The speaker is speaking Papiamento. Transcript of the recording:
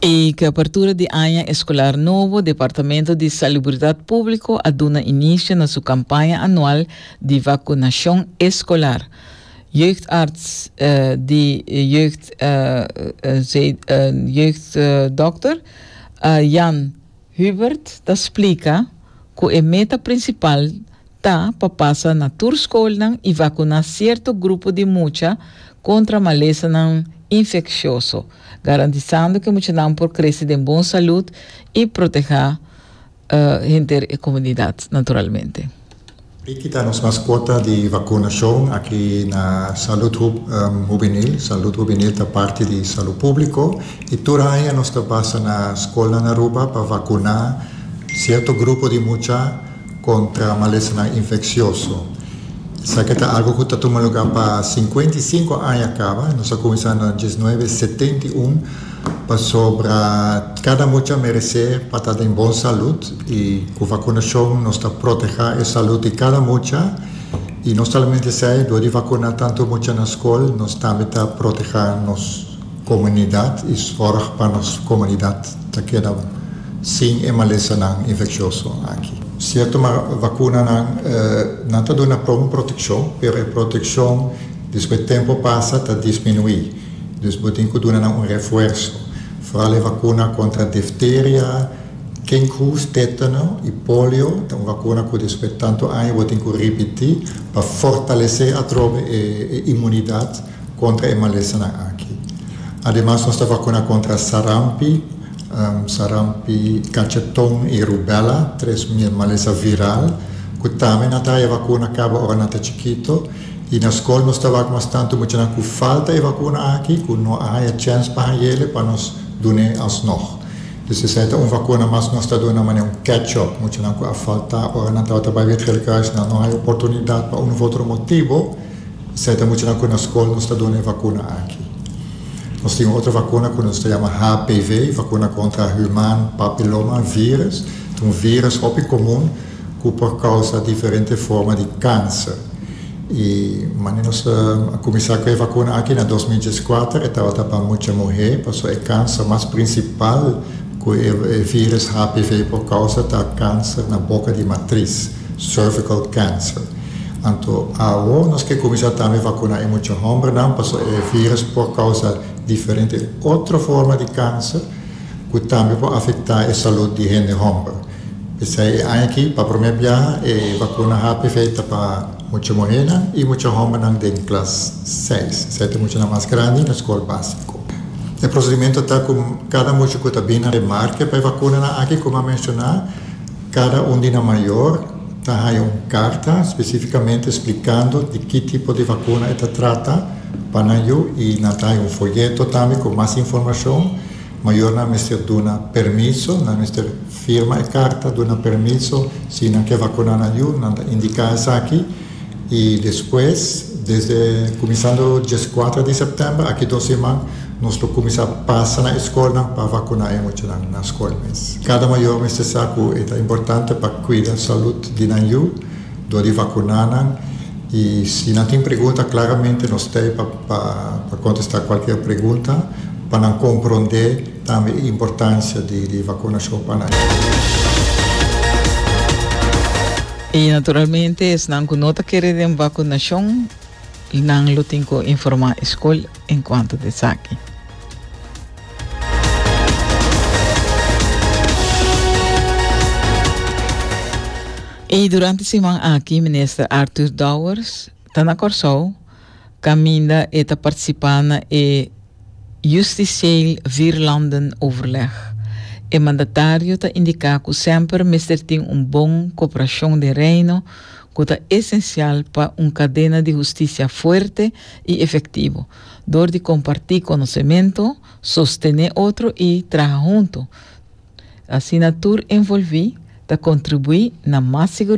I cu apertura di aña escolar nobo, Departamento di Salubridad Publico a duna inicio na su campaña anual di vacunacion escolar. Jeugdarts eh, di jeugd, eh, eh, jeugddokter, eh, Jan Hubert ta splika cu e meta principal ta pa pasa na tur scolnan y vacuna cierto grupo di mucha contra malesanan infeccioso, garantisando cu e muchanan por crece den bon salud y proteha henter e comunidad naturalmente. E kita nos mas kuota di vakunashon aki na Salud Hub Hubenil. Salud Hubenil ta parti di Salu Públiko i tur aña nos ta basa na skolnan Aruba pa vakuná sierto grupo di mucha kontra malesanan infeksioso. Esaki ta algu ku ta tuma lugá pa sinkuenta i sinku aña kaba. Nos a kuminsá na diesnuebe setenta i un. Pasobra kada mucha meresé pa ta den bon salud i ku vakunashon nos ta protehá e salud di kada mucha. I no solamente esei, dor di vakuná tantu mucha na skol, nos tambe ta protehá nos komunidat i sòrg pa nos komunidat ta keda sin e malesanan infekshosnan aki. Sierto, ma vakunanan nan ta duna pron protekshon, pero e protekshon despues tempu pasa ta disminuí. Dus bo tin cu duna nan un refuerzo. Vooral e vacuna contra difteria, kinkhoest, tetano y polio ta un vacuna cu despues tanto aña bo tin cu ripiti pa fortalece atrobe e inmunidad contra e malesanan aki. Ademas nos ta vacuna contra sarampi, sarampi, cacheton y rubella, tres malesa viral cu tambe nan ta haya vacuna caba ora nan ta chikito. Y na school nos ta wak mas tanto muchanan cu falta e vacuna aki cu no a haya chens pa hangele pa nos dun'e alsnog. Dus esey ta un vacuna mas nos ta duna manera un catch up. Muchanan cu a falta ora nan tabata bay Virgelkruis nan no haya oportunidad pa un of otro motibo, esey ta muchanan cu na school nos ta duna e vacuna aki. Nos tin un otro vacuna cu nos ta yama HPV, vacuna contra human papiloma virus. Ta un virus hopi comun. cu por causa diferente forma di cancer. Y mane nos a cuminsa cu e vacuna aki na dos mil dieskuater e tabata pa mucha muher, pasobra e cancer mas principal cu e virus HPV por causa ta cancer na boca di matris, cervical cancer. Anto awor nos ke cuminsa tambe vacuna e mucha hombernan, pasobra e virus por causa diferente otro forma di cancer cu tambe por afecta e salud di hende homber. P'esei e aña aki, pa promé biaha, e bakuna HPV ta pa mucha muhénan i mucha hómbernan den klas seis, esei ta muchanan mas grandi na skol básiko. E prosedimentu ta ku kada mucha ku ta bini ta marke pa e bakunanan aki. Kuma menshoná, kada un di nan mayor ta haña un karta spesífikamente splikando di ki tipo di bakuna e ta trata pa nan yu i nan ta haña un foyeto tambe ku mas informashon. Mayornan mester duna permiso, nan mester firma e karta duna permiso si nan ke vakuná nan yu, nan ta indiká esaki i despues desde kuminsando dieskuater di sèptèmber aki dos siman nos lo kuminsá pasa na e skolnan pa vakuná e muchanan na skol mes. Kada mayor mester sa ku e ta importante pa kuida salud di nan yu. Dor di vacunanan y si nan tin pregunta claramente nos ta ey pa contesta cualkier pregunta pa nan compronde tambe e importancia di vacunacion pa nan. Y naturalmente esnan cu no ta kere den vacunacion nan lo tin cu informa escol. en cuanto ta esaki. Y durante siman aki minister Arthur Dowers ta na Corsou caminda e ta participa na e justicieel vierlanden overleg. E mandatario ta indica cu semper mester tin un bon cooperacion den Reino cu ta esencial pa un cadena di husticia fuerte y efectivo, dor di comparti conocemento, sostene otro y traha hunto. Asina tur envolvi ta contribui na mas.